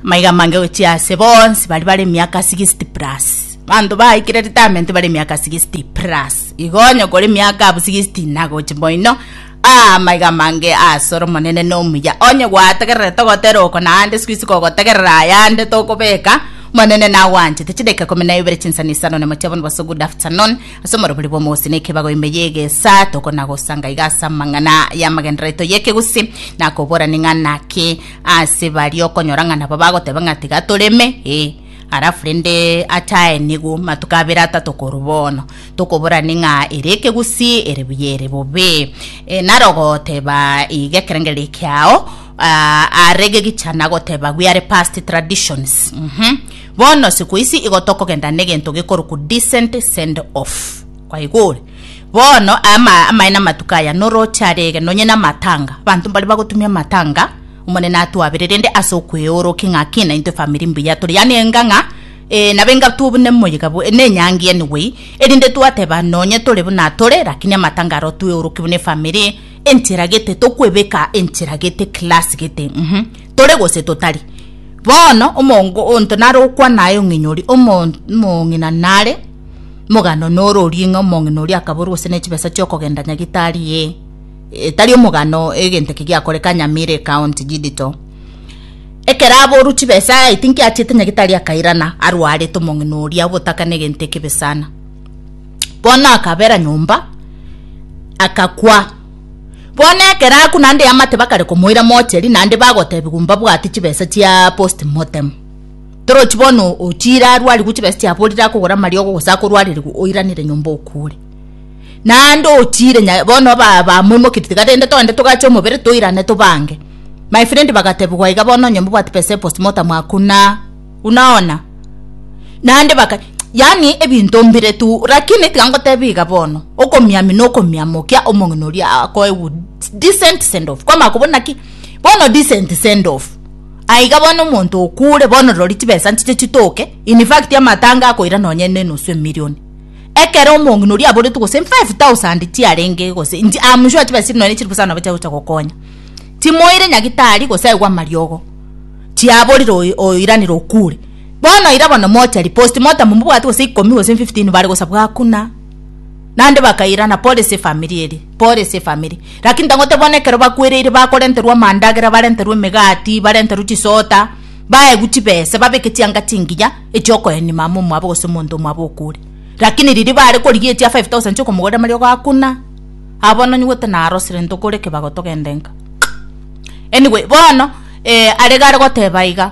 Amaiga amange gochia ase bonsi baria bare emiaka 60 plus. Abanto baikire retirement bare emiaka 60 plus. Igo onye kore emiaka abwo 60 na gochi moino, ah, amaiga amange ase ore omonene na omuya. Onye gwategerere togotera oko naende siku isi kogotegerera ayande tokobeka Omonene nagwanchete. Chidakika ikomi na ibere chinsani isano na mochie bono boso good afternoon. Ase omorobori bw'omogusii na ekebago ime ya egesa tokona gosanga iga ase amang'ana y'amagenderero aito y'ekegusi na koborani ng'a naki Ase baria okonyora ng'a nabo bagoteba ng'a tiga toreme ee alafu rende achae nigo matuko abere atato koru bono tokoborane ng'a ere ekegusi ere buya ere bobe e, naro goteba iga ekerengere ekiao ah, are gegichana goteba we are past traditions mm -hmm. bono siku isi igo tokogenda negento gikoruku decent send off Kwaigure, bono ama amaene amatuko aya noroche arege nonye namatanga, abanto mbare bagotumia amatanga, Omonene atwabere rende ase okweorokia ng'a ki na intwe famiri mbuya tore, yaani enga ng'a ee, nabo enga twobu nemoyega bwe nenyangi ene wei, erinde twateba nonye tore buna tore, lakini amatanga aro tweoroki buna efamiri enchera gete, tokwebeka enchera gete, class gete, mhm, tore gose totari. Bono omongo onto nare okwana aye ong'inyori, omo omong'ina nare Mogano noro orie ng'a omong'ina oria akaborwa gose nechibesa chiokogenda nyagitari ee etari omogano egento eke giakore kanyamira ekaonti jidito ekero aborwa chibesa I think achiete nyagitari akairana arwarete omong'ina oria obotaka negento ekebe sana bono akabera nyomba akakwa bono ekero akwa naende eamate bakare komoira mocheri naende bagotebiwa mbabwate chibesa chia post motem. Torochi bono otiire arwarigwe chibesa chiabo orire akogora amariogo gose akorwarerigwe oiranire nyomba okure. Naende otiire bono bamoimoketie tiga rende togende togache omobere toirane tobange. My friend bagatebiwa iga bono onye mbobwati pesa postmortem hakuna. Unaona? Naende baka yaani ebinto mbire tu lakini tiga ngotebie iga bono okomiamina okomiamokia omong'ina oria akoe decent send off kwamanya kobuna ki bono decent send off Aiga bono omonto okure bono rori chibesa nchiche chitoke in fact amatanga akoira nonye ne enusu emillion ekero omong'ina oria aboretwe gose in 5000 chiarenge gose in am sure chibesa chiria nonye chiri bosa nabo chiagocha gokonya timoire nyagitari gose aigwe amariogo chiaborire oyo oyoiranera okure bono ira bono mocha riposti motamomobwati gose ikomi gose in 15 bare gosabwa hakuna. Naende bakairana, Pole s'efamiri eria, pole s'efamiri. Lakini tangote bono ekero bakwereire bakorenterwa amandagera, barenterwe emegati, barenterwe chisota, baegwe chibesa, babeke chianga chingiya echiokoenia mama omwabo gose omonto omwabo okure. Lakini riria bare korigia echia five thousand chi'okomogorera amariogo hakuna. Abwo bono nyigwete narosire ntokore kebago togende nka. Anyway, bono are gare goteba iga.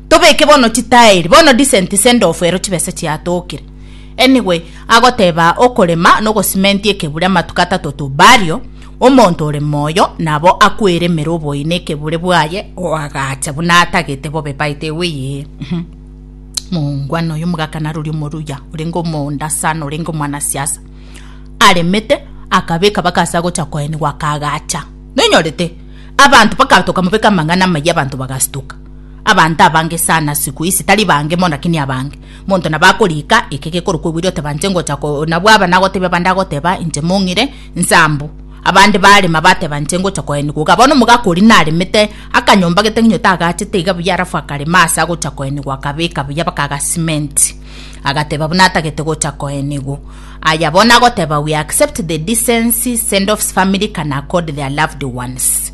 Tobeke bono chitaeri. Bono descent sendoff ero chibesa chiatokire. Anyway agoteba okorema nogosimenti ekebure amatuko atato to burial omonto ore moyo nabo akwere emere oboine ekebure bwaye oagacha buna atagete bobe by the way mongwana oyo omogakana rori omoruya orenge omonda sana orenge omwana siasa aremete akabeka bakasa agocha koenigwa akagacha nonyorete abanto bakatoka mobeka amang'ana amaya abanto bagastuka Abanto abange sana siku ici tari bange mo lakini abange. Monto nabo akorika eke gekorokwa ebwiri otebanche ngocha ko nabwo aba nagotebia abande agoteba inche mong'ire nsambu. Abande barema batebanche ngocha koenigwa iga. Bono omogaka oria naremete akanyomba getegenyo tagachete iga buya alafu akarema ase agocha koenigwa akabeka buya baka agasimenti. Agateba buna atagete gocha koenigwa. Aya bono agoteba we accept the decency, sendoffs, family can accord their loved ones.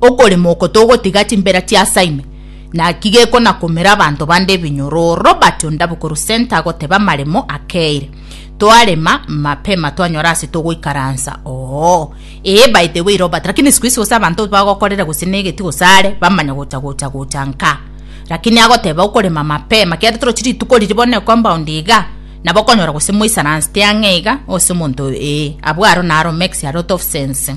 okorema oko togotiga chimbera chiasaime naki gekonakomera abanto bande ebinyoroo. Robert Ondabukuru Center agoteba amaremo akeire toarema mapema twanyora ase togoikaransa oo ee by the way Robert lakini siku hizi gose abanto bagokorera gose negeti gose are bamanya gocha gocha gocha nka lakini agoteba okorema mapema kiaria torochi rituko riri bono ecompound iga nabo okonyora gose mwaisaransete ang'e iga ase omonto ee abwo aro naro makes a lot of sense.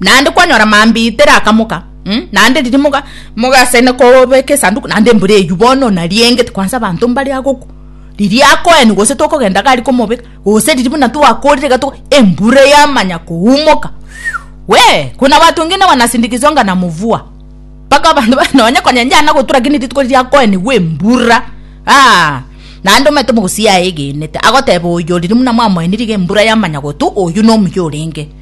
Naende kwanyora mambia tere akamoka mm, naende riria moga mogasene kobeka esanduku naende embura eyio bono nariengeti kwansa abanto mbare agoku riria akoeni gose tokogenda gari komobeka gose riria buna twakorire iga togo embura yamanya koumoka wee kuna watu wengine wanasindikizwa nga na mvua mpaka abanto ba- nonye konyenchana gotura lakini rituko riria akoenigwa embura aa naende omanyete omogusi yaye egenete agoteba oyo riria buna mwamoeniri iga embura yamanya gotu oyu nomuya orenge.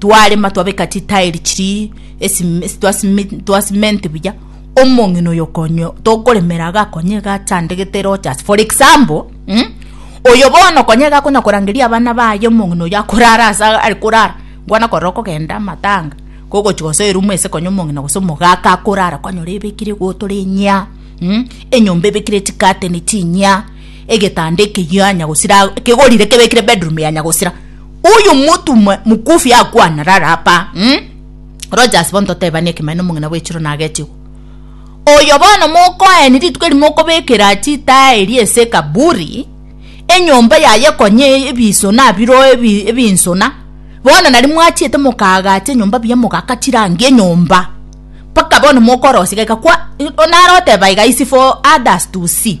twarema twabeka chitairi chiri esime- esi- twasime- twasimenti buya omong'ina oyo okonyo tokoremera iga akonye iga achandegete rogers for example mm? oyo bono okonye iga akonya korangeria abana baye omong'ina oyo akorara ase iga are korara nkwana korora okogenda amatanga kogochi gose erumu ase konya omong'ina gose omogaka akorara kwanyora ebekire egoto rinyia mm? enyomba ebekire chikateni chinyia egetanda ekeyio anyagosira kegorire kebekire bedroom yanyagosira Uyu mutumwa mukufi akwana rara apa mm? Rogers bono totebani ekemeno omong'ina bwechiro nagetigwa oyo bono mokoeni rituko eri mokobekera chitae eri ese kaburi enyomba yaye konye ebisona biro ebinsona bono nari mwachiete mokagacha enyomba biya mogakachirangi enyomba paka bono mokorosiga kwa onaroteba iga isi for others to see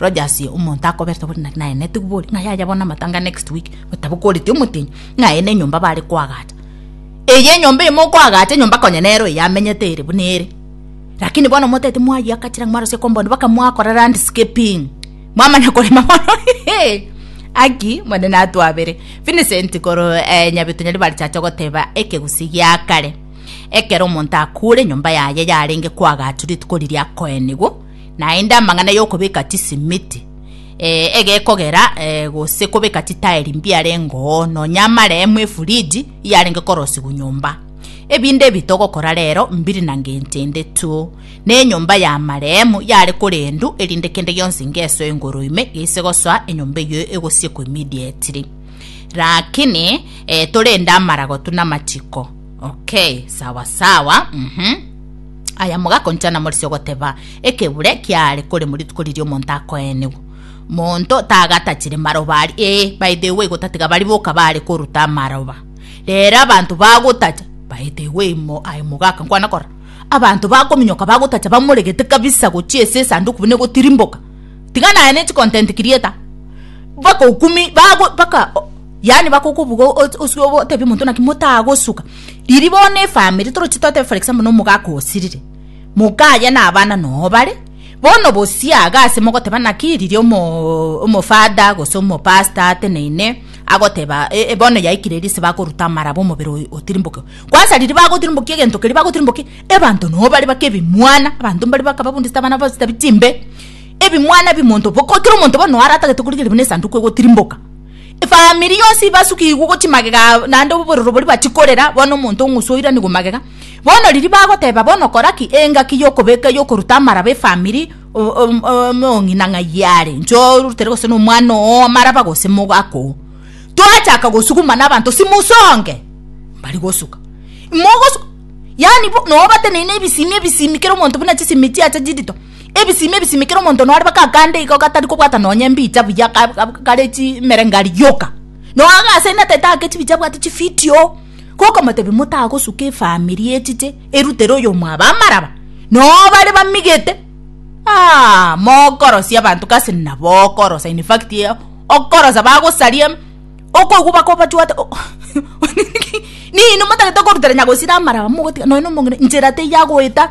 Rogers omonto akoberete bori naki naye netigu bori ng'a yaya bono amatanga next week gotabokoreti omotenyi ng'a aye nenyomba bare koagacha eye enyomba eye mokoagacha enyomba konya nero eye amenyete ere buna ere lakini bono motete mwayaka chiragi mwarosia compound baka mwakora landscaping mwamanya korema bono haki omonene atwabere Vincent koro eh, nyabitu nyari barichache goteba ekegusii gia kare ekero omonto akure enyomba yaye yarenge koagachu rituko riria akoenigwa naende amang'ana y'okobeka chisimiti, eh, egekogera, eh, gose kobeka chitaeri mbiarengeo, nonya amaremu efuriji iyarenge korosigwa nyomba. Ebinde ebi togokora rero mbiri na ngencho ende tu. Ne enyomba y'amaremu yare korendu erinde kende gionsi ngesoe igoro ime geise gosoa enyomba eyio egosiekwa immediately. Rakini, eh, torende amaragotu na amachiko. Okay, sawa sawa, mhm. Aya mogakoncha namorisia ogoteba, Ekebure kiaare kore morituko riria omonto akoenigwa. Monto tagatachire maroba aria, ee, by the way, gotatiga baria boka baare koruta amaroba. Rero abanto bagotacha, by the way, mo, aye mogaka nkwana kora. Abanto bakominyoka bagotacha bamoregete kabisa gochia ase esanduku buna egotirimboka. Tiga naye ne chicontent creator. Bakokumi, bago, baka, o- yaani bakokobuga o- o- oswe obo otebie omonto naki motagosuka. Riria bono efamiri toroche twateba for example na omogaka osirire, moka aye na abana noo bare, bono bosia iga ase mogoteba naki riria omo omofada gose omopasta ateneine agoteba eh bono yaikire riria ase bakoruta amaraba omobere oyo otirimboke. Kwansa riria bagotirimbokia egento keria bagotirimbokia ebanto noo bare bake ebimwana, abanto mbare bakababundisete abana babo chitabia chimbe, ebimwana ebi monto bo kera omonto bono noo aratagete korigereria buna esanduku egotirimboka. Efamiri yonsi ibasukigwe gochia magega aa, naende obororo boria batikorera, bono omonto ong'usu oiranigwe magega. Bono riria bagoteba bono kora ki, engaki yokobeka yokoruta amaraba efamiri, omong'ina ng'ai are, inche orutere gose nomwana oo amaraba gose mogaka oo. Twachaka gosuguma nabanto simusonge, mbari gosuka. Mogosu yaani bo nobateneine ebisimi ebisimi kera omonto buna chisimi chiacha chirito. Ebisimi ebisimi kera omonto nore mpaka akande igo gatari kobwata nonye mbicha buya kare chimerengari yoka no iga ase nete take chibicha abwate chividio gokomotebi motagosuka efamiri echiche erutere oyo mwabo amaraba no bare bamigete aah mokorosia abanto gasi nabo okorosa in fact okorosa bagosaria okoigwa baka obachwate nini motagete korutera nyagosira amaraba mogotiga nonye na omong'ina nchera teiyagoeta.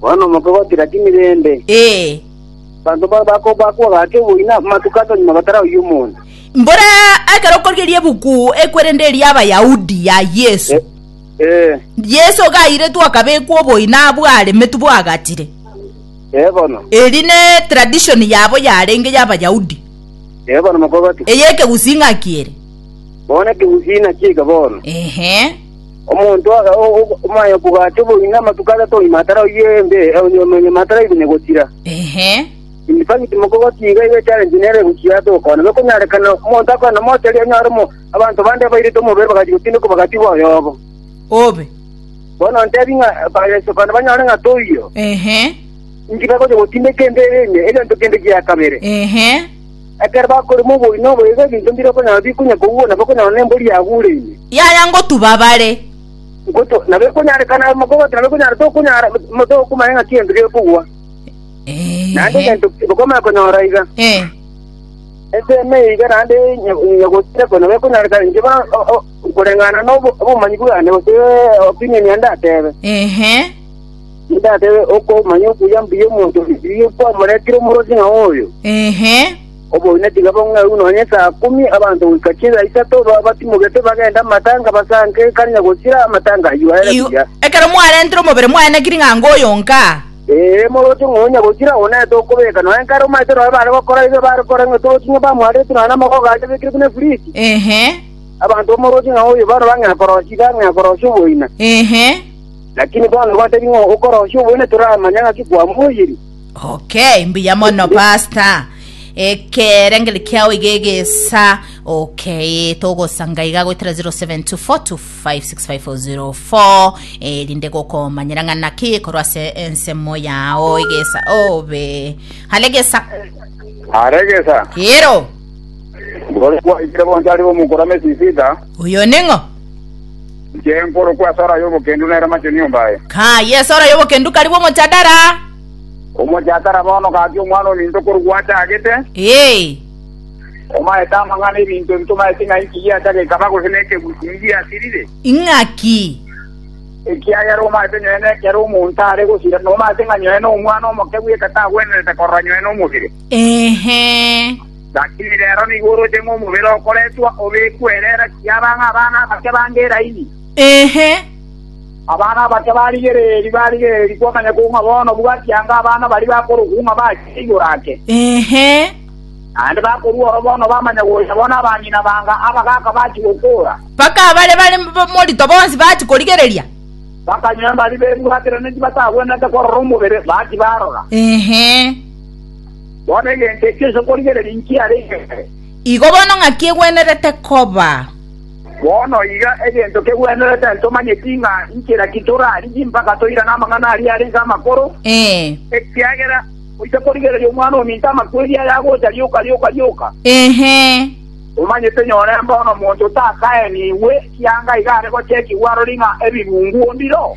Bono mokogoti gati mirembe. Ee. Abanto ba- bako- bakwa gaki oboina amatuko ato nyuma batarauya omonto. Mbora ekero okorigeria ebuku ekwerende eria Abayahudi ya Yesu. Eh, Eh, Yesu gairetwe akabekwa oboina abwo aremetu bwagatire. eh bono. Eri ne tradition yabo yarenge ya Abayahudi. Eh bono mokogoti. Eye ekegusing'aki ere. Bono ekegusina chiika bono. Ehe. Omonto omoaye okogaacha oboyio namatuko atato onye taraoyia embe, onye onyama taraigwe ne gotira. In fact, mokogokia iga iga echallenge nere gochia ase okoona. Nokonyarekana omonto akoe na moto erio onyore mo abanto bande abairete omobere bagachia gotindekwa bagatigwa oyobo. Obe. Bono ntebi ng'a bayeso kona banyore ng'a toiyo. Inki bagochia gotindeka embe eye, egento kende gia kabere. Ekero bakorema oboino obo iga ebinto mbire okonyora bikonya kogugwa na bakonyora nembori yagureine. Yaya ngotuba bare. Ngoto, na bekonyarekana amo kobwata na bekonyara tokonyara, tokomanya ng'aki gento gekogwa. Naende Eeh. egento bakomanya konyora iga, Eeh. ensemo eye iga naende nya- nyagotire konya bekonyarekana inche ba- o- o- koreng'ana nobo- obomanyi bwane gose opinion yane ndatebe. Eeh. Ndakebe okomanya okuya mbuya omonto o Misiri okwamoretire omorosi ng'a oyo. Ehe. Oboiyo netiga bong'eu nonye saa kumi, abanto goika chinsa isato baba batimogete bagende amatanga basanke ekarinya gosira amatanga ayio aere Igo- buya. Ekero mwarentire omobere mwane na kiring'a anga oyo nka. Ee, moroche ng'a onya gosira onete okobeka nonya nkare omanyete nonya bare gokora iga bare kore ng'a torochi ng'a bamwarerete nonya namagogo aria abekire buna efuriti. Ehe. Abanto bamoroche ng'a oyo bono bang'ea korosia iga ang'ea korosia oboina. Ehe. Lakini bono gotebia ng'a okorosia oboyio netoramanya ng'aki kwamoiyirie. Okay, mbuya mono pastor. Ekerengeri kiao iga egesa. Okay, togosanga iga goetera 0724256504 erinde eh, gokomanyera ng'a naki korwa ase ensemo yao egesa obe. Hale egesa. Aregesa. Ero. Bore kwaikire bonsi ari bomukorame sisita. Oyo ning'o? Inche nkorokwa Sora y'obokendu nere machenu nyomba aye. Kaye Sora y'obokendu karigwe omochadara. Omochadara bono gaki omwana ominto korigwe achagete. Ee. Omaete amang'ana ebinto ebito maete ng'a inki giacha gekaba gose nekegwi ki giasirire. Ing'aki? Ekiagera omaete nyoe nekero omonto are gosira, nomaete ng'a nyoe nomwana omokegwi ekero tagwenerete korora nyoe nomosire. Ehe. Lakini rero nigo oroche ng'a omobere okoretwa obekwe ere era kiaba ng'a abana abake bange eraini? Ee. Abana abake barigereiri, barigereiri kwamanya kogwa ng'a bono bwati anga abana baria bakorokwa ng'a bachire igoro ake. Ee. Naende bakorua ororo bono bamanya gocha bono abang'ina banga abagaaka bachi gokoora. Mpaka abare bare morito bonsi bachi korigereria. Bakanywa embari bebwateranie tibatagwenerete korora omobere, bati barora. Ee. Bono egento ekio inse nkorigereria nkiare inwe kare. Igo bono ng'aki egwenerete koba? Bono iga egento kegwenerete, ntomanyeti ng'a inche naki torarigie mpaka toirane amang'ana aria arenge amakoro, ekiagera goika korigereria Omwana-o-minto amakweri aya agocha rioka rioka rioka. Omanyete nyore mbono omonto otakaenigwe kianga iga are gochekigwa arori ng'a ebibungu o mbiro.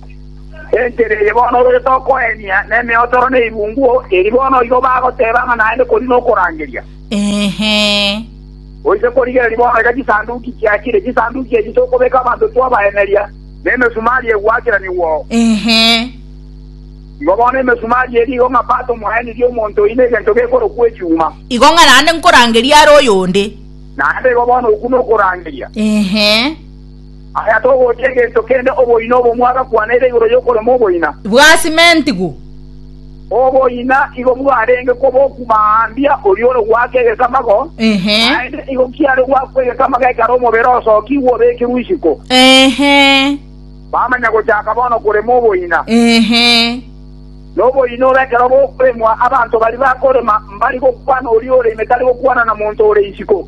Enchera eye bono ore tokoenia nemeotoro ne irungu eri bono igo bagoteba ng'a naende kori nokorangeria. Goika korigereria bono iga chisanduki chiachire, chisanduki echi tokobeka abanto twabaeneria, na emesumari egwacheranigwao. Igo bono emesumari eri igo ng'a Pato mwaenirie omonto oino egento gekorokwa echuma. Igo ng'a naende nkorangerie are oyonde. Naende igo bono okwo nokorangeria. Aya togochia egento kende oboina obomwa agakwana ere igoro y'okorema oboina. Bwasimentigwe. Oboina igo bwarenge koboku maambia oria ore goaka egesamago, naende igo kiare goakwa egesamago ekero omobere osokigwe obekirwe isiko. Bamanya gochaka bono korema oboina. Noboina obo ekero bokoremwa, abanto baria bakorema mbari gokwana oria ore ime tari gokwana na monto ore isiko.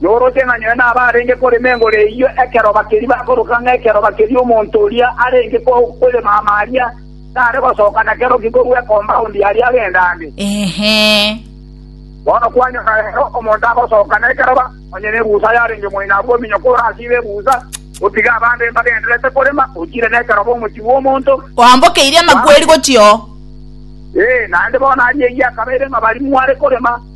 Noroche ng'a nyowe nabarenge korema engoro eyio ekeroba keria bakoroka ng'a ekeroba keria omonto oria arenge korema ama aria tare gosoka nakero ki korwa ekombaondi aria agendande. Inhe. Bono kwanyora rero omonto agosoka nekeroba, onye nebusa yarenge moino abwo ominyoke orasibe ebusa, otige abande mbagendererete korema, ochire nekeroba omochie bw'omonto. Oambokeirie amakweri gochia oo. Ee, naende bono aria eyio akabeire ng'a baria mware korema.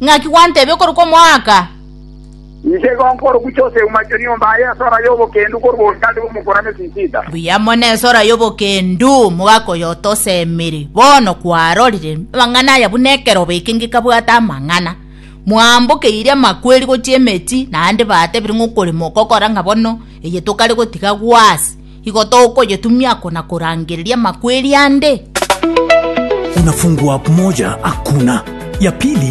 Naki gwantebia okorokwa omoaka? Inche igo nkorugucha oseuma chio nyomba aye esora y'obokendu korwa obochande bw'omokuani o Sisida. Buya mono esora y'obokendu mogakoyotosemiri, bono kwarorire amang'ana aya buna ekeroba eke ngekabwate amang'ana. Mwambokeire amakweri gochia emechie, naende batebire ng'a okorema okogora ng'a bono eye tokare gotiga gwase, igo tokoyetumia ako na korangereria amakweri ande. Unafungua moja hakuna ya pili